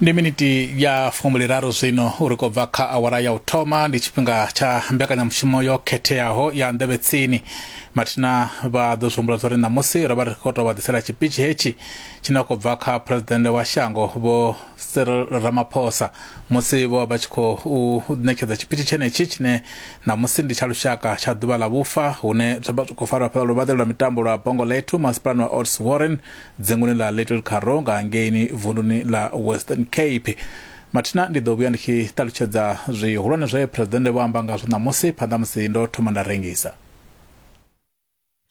ndi miniti ya fumbiliraru zwino uri kho bva kha awara ya u thoma ndi tshifhinga tsha mbekanyamushumo yo khetheaho ya nḓevhe tsini mathina vha ḓo zwi humbula zwa uri ṋamusi ro vha ri khou tou vha ḓisela tshipitshi hetshi tshine a khou bva kha phuresidennde wa shango vho cyril ramaphosa musi vho vha vha tshi khou ṋetshedza tshipitshi tshenetshi tshine ṋamusi ndi tsha lushaka tsha ḓuvha ḽa vhufa hune zwa vha zwi khou farwa fhaḽa luvhaḓe lwa mitambo lwa bongo lethu masipalani wa ots warren dzinguni ḽa little carro nga hangeini vunduni ḽa western cape mathina ndi ḓo vhuya ndi tshi ṱalutshedza zwihulwane zwe phuresidennde vho amba ngazwo ṋamusi phanḓa musi ndo thoma nda rengisa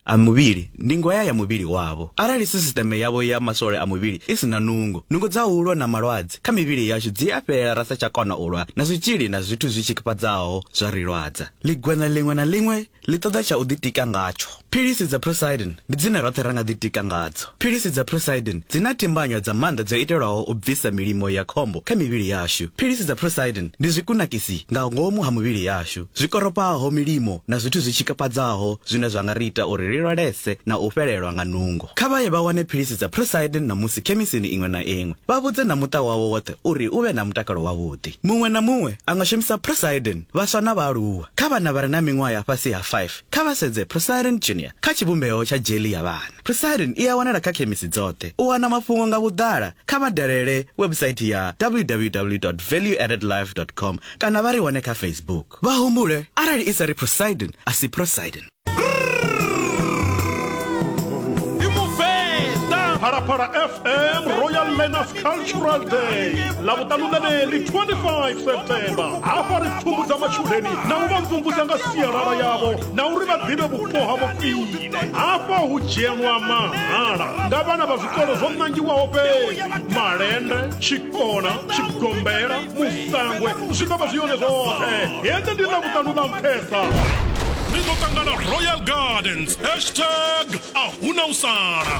a muvhili ndi ngwaya ya muvhili wavho. Arali sisiteme yavho ya maswole a muvhili i si na nungo, nungo dza u lwa na malwadze kha mivhili yashu dzi a fhela ra sa tsha kona u lwa na zwitzhili na zwithu zwi tshikafhadzaho zwa ri lwadza. Ligwenya ḽiṅwe na ḽiṅwe ḽi ṱoḓa tsha u ḓitika ngatsho. Philisi dza Prosidin ndi dzine roṱhe ra nga ḓitika ngadzo. Philisi dza Prosidin dzi na timbanywa dza maanḓa dzo itelwaho u bvisa milimo ya khombo kha mivhili yashu. Philisi dza Prosidin ndi zwikunakisi nga ngomu ha muvhili yashu zwi koropaho milimo na zwithu zwi tshikafhadzaho zwine zwa nga ri ita uri ri lwalese na u fhelelwa nga nungo. Kha vha ye vha wane philisi dza Prosidin ṋamusi khemisini iṅwe na iṅwe. Vha vhudze na muṱa wavho woṱhe uri u vhe na mutakalo wavhuḓi. Muṅwe na muṅwe a nga shumisa Prosidin, vhaswa na vhaaluwa. Kha vhana vha re na miṅwaha ya fhasi ha 5, kha vha sedze Procyrin Junior kha tshivhumbeo tsha dzheli ya vhana. Procyrin i a wanala kha khemisi dzoṱhe. U wana mafhungo nga vhuḓala, kha vha dalele webusaithi ya www dot valueaddedlife dot com kana vha ri wane kha Facebook. Vha humbule arali i sa ri Procyrin, a si Procyrin. phalaphala fm royal manners cultural day lavhuṱanu ḽeneḽi 25 september hafha ri pfumbudza matshudeni na u vha mvumvusa nga sialala yavho na uri vha ḓivhe vhupo ha vhofhile hafha hu dzhenwa mahala nga vhana vha zwikolo zwo nangiwaho fhedzi malende tshikona tshigombela musangwe zwi ḓo vha zwi yone zwoṱhe hende ndi na vhuṱanu na mphesa ri ḓo ṱangana royal gardens hashtag a huna u sala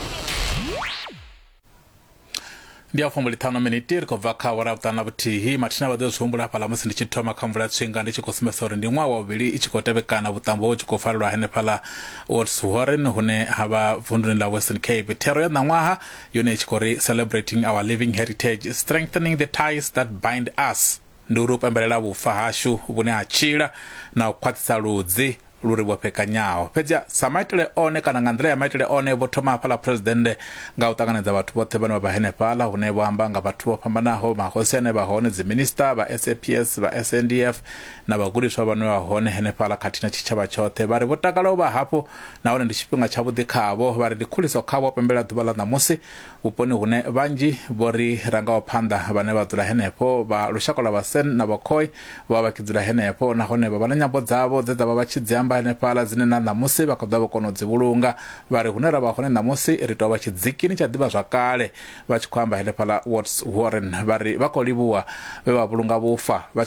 ndi a fumbu ḽiṱhanu miniti ri khou bva kha awara vhuṱanu na vhuthihi mathina vha ḓo zwi humbula hafhaḽa musi ndi tshi thoma kha mvula tswinga ndi tshi khou sumbedza uri ndi ṅwaha wa vhuvhili i tshi khou tevhekana vhuṱambo ho tshi khou farelwa henefhaḽa woods warren hune ha vha vunduni ḽa western cape thero ya ṋaṅwaha yone i tshi khou ri celebrating our living heritage strengthening the ties that bind us ndi uri u pembelela vhufa hashu vhune ha tshila na u khwaṱhisa ludzi lu ri vhofhekanyaho fhedzi sa maitele one kana nga nḓila ya maitele one vho thoma hafhaḽa phuresidennde nga u ṱanganedza vhathu vhoṱhe vhane vha vha henefhaḽa hune vho amba nga vhathu vho fhambanaho mahosi ane vha hone dziminista vha saps vha sndf na vhagudiswa vhane vha hone henefhaḽa khathihi na tshitshavha tshoṱhe vha ri vho takala u vha hafho nahone ndi tshifhinga tshavhuḓi khavho, vha ri ndi khuliso khavho u pembela ḓuvha ḽa ṋamusi vhuponi hune vhanzhi vho ri rangaho phanḓa vhane vha dzula henefho vha lushaka lwa Vhasen na Vhakhoi vho vha vha tshi dzula henefho nahone vha vha na nyambo dzavho dze dza vha vha tshi dzi amba henefhaḽa dzine na ṋamusi vha kha ḓa vho kona u dzi vhulunga. Vha ri, Hune ra vha hone ṋamusi ri tou vha tshidzikini tsha ḓivhazwakale. Vha tshi khou amba henefhaḽa Watts Warren, vha ri vha khou livhuwa vhe vha vhulunga vhufa.